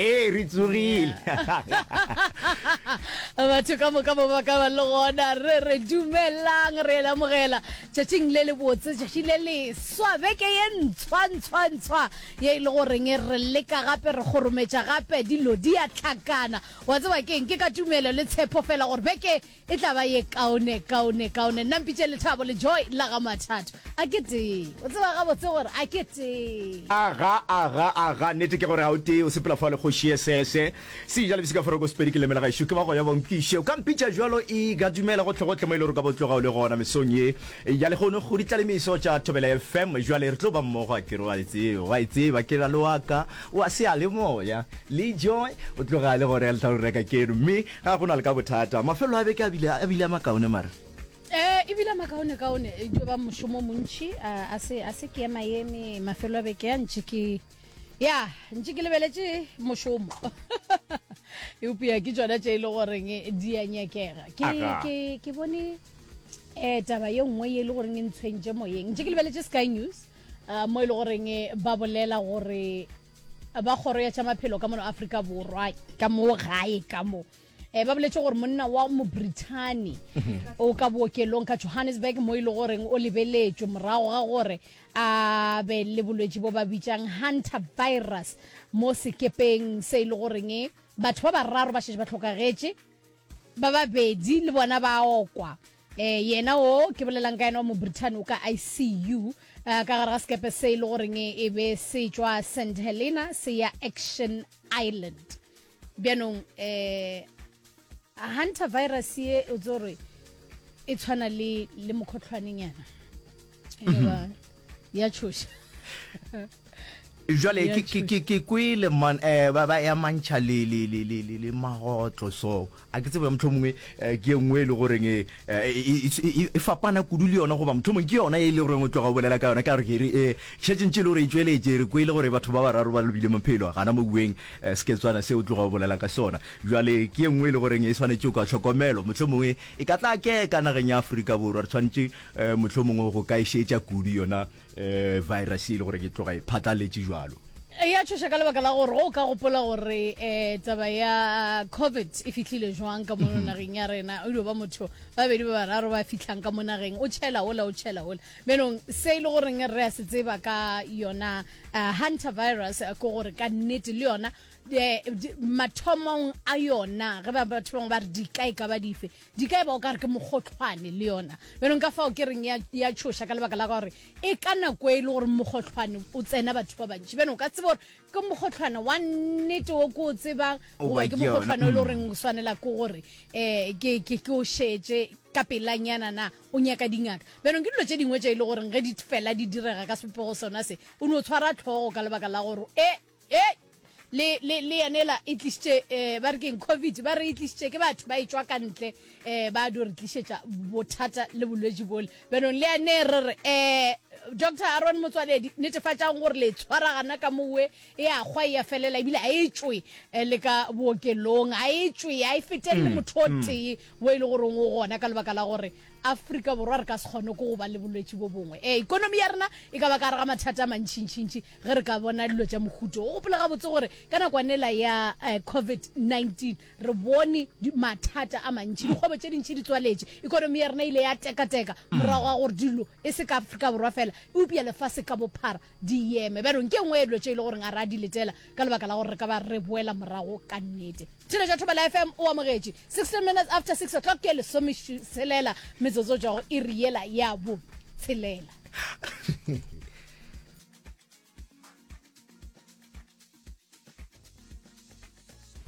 ee re tsogile batho ka moka ba baka ba le gona re re dumelang re lamogela tšatšing le le botse tšatši le leswa beke ye ntshwantshwantshwa ye e le goreng e re leka gape re kgorometša gape dilo di a tlhakana wa tseba keng ke ka tumelo le tshepo fela gore beke E tla ba ye kaone, kaone, kaone. Nna mpitše Lethabo le Joy la ga Mathato. A ke tee. O tseba gabotse gore a ke tee. Aga, aga, aga. Nnete ke gore ga o tee. O sepela fale kgoši ye sese. Seja le bisika foroko Sepedi ke lemela gaešo. Ke ba go ya ba nkwiše. O ka mpitša bjalo ega dumela gohlegohle mo e le gore o ka bo tloga o le gona mesong ye ya lehono go ditlalemiso tša Thobela FM. Bjale re tlo ba mmogo a ke re. O a e tseba, o a e tseba ke ra le wa ka wa seyalemoya. Le Joy o tloga a le gona ya Lethabo re reka keno mme Ga go na le ka bothata. Mafelelo a beke a bile, a bile a makaone, mara. Ee, e bile a makaonekaone. E tlo ba mošomo o montši. A, a se, a se ke ema eme mafelelo a beke a ntše ke, ya, ntše ke lebeletše mošomo. Eupša ke tšona tše e le goreng di a nyakega. Ke, Aga. ke, ke bone eh, taba ye nngwe ye e le goreng e ntshwentše moyeng. Ntše ke lebeletše Sky News, ah, mo e le goreng ba bolela gore ba kgoro ya tša maphelo ka mono afrika borwa ka moo gae ka mo um ba boletse gore monna wa mobrithane mhm. o ka bookelong ka johannesburg mo e le goreng o lebeletswe morago ga gore a be le bolwetse bo ba bitsang hunter virus mo sekepeng se e le goreng e, batho ba bararo ba šetse ba tlhokagetše ba babedi le bona ba okwa Ee, yena wo ke bolelang ka yena wa Mobritain o ka ICU ka gare ga sekepe se e le goreng e be se tšwa St Helena se ya Action Island. Bjanong um hantavirus ye o tse gore e tshwana le mokhohlwanenyana. ya tšhoša jale ke kwele man um ba ba ya mantšha le magotlo so a ke tsebe motlho mongwe eh, ke e nngwe e le goreng eh, e, e, e fapana kudu le yona goba motlho mongwe ke yona e le goreng o tloga o bolela ka yona ka gore ke re um šetsentše le gore e tsweletse re kwele gore batho ba bararo ba lobile maphelo gana mo bueng um seketswana se o tloga o bolelang ka sona jale ke e nngwe e le goreng e tshwanetse o ka tlhokomelo motlho mongwe e ka tla ke ka nageng ya aforika borwa re tshwanetse um mohlomongwe go ka e šetša kudu yona um virus e le gore ke tloga e phatlaletše jalo e ya tšhoša ka lebaka la gore go ka gopola gore um taba ya covid e fitlhile jwang ka mo mhm. nageng ya rena o dio ba motho ba bedi ba bararo ba fitlhang ka mo nageng o tšhela ola o tšhela ola menong se e le goreng re ya se tseba ka yona eh, hunter virus eh, ko gore ka nnete le yona eh, mathomong a yona ge ba batho bangwe ba re dika e ka ba dife Di ka eba o ka re ke mogotlhwane le yona, bjanong ka fao ke reng ya, ya tšhoša ka lebaka la gore e ka nako e le gore mogotlhwane o tsena batho ba bantši, bjanong o ka tseba gore ke mogotlhwane wa nnete wo ke o tsebang Goba goba ke ke yona, mogotlhwane o e le mm. goreng o swanela ke gore um ke, ke, ke o šetše ka pelanyana na o nyaka dingaka bjanong ke dilo tše dingwe tše e le goreng ge di fela di direga ka sepopego sona se o no tshwara tlhogo ka lebaka la gore e Ye le, le, le yena ela e tlišitše, eh, ba re keng, Covid, ba re e tlišitše ke batho ba e tšwa ka ntle, eh, ba do re tlišetša bothata le bolwetši bole. Bjanong le yane re re, eh, Doctor Aaron Motswaledi, netefatšang gore le e tshwara gana ka mo we, e a kgwa, e a felela, ebile ga e tšwe eh, le ka bookelong, ga e tšwe, ga e fetelele mm, motho o mm. tee wo e le goreng o gona ka lebaka la gore Afrika Borwa re ka se kgone ko go ba le bolwetši bo bongwe. Eh, ikonomi ya rena e ka ba ka re ga mathata a mantšhintšhintši, ge re ka bona dilo tša mohuto o gopola gabotse gore ka nakwanela ya uh, covid-19 re bone mathata a mantši dikgwebo tše dintšhi di tswaletše ekonomi ya rena ile ya tekateka mm. morago ga gore dilo e se ka afrika borwa fela eupša lefase ka bophara di yeme bjanong ke nngwe ya dilo tše e le goreng a re a di letela ka lebaka la gore re ka ba re boela morago ka nnete tšhelo ja thobela fm o amogetše 16 minutes after 6 o'clock ke lesomeselela metsotso jago e riela ya bo tshelela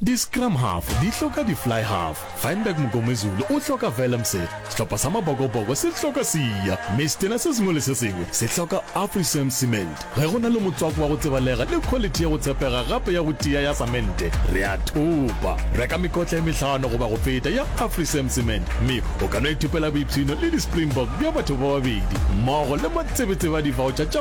Di-scrum half di hloka di-fly half. Feinberg Mngomezulu o hloka Vellemse. Sehlopha sa Mabokoboko se hloka Siya. Mme setena se sengwe le se sengwe se hloka Afrisam Cement. Ge go na le motswako wa go tsebalega le khwalithi ya go tshepega gape ya go tia ya samente, re a thopa. Reka mekotla e mehlano goba go feta ya Afrisam Cement mme o ka no ithopela boipshino le di-Springbok bja batho ba babedi mmogo le matsebetsebe a divaotšha tša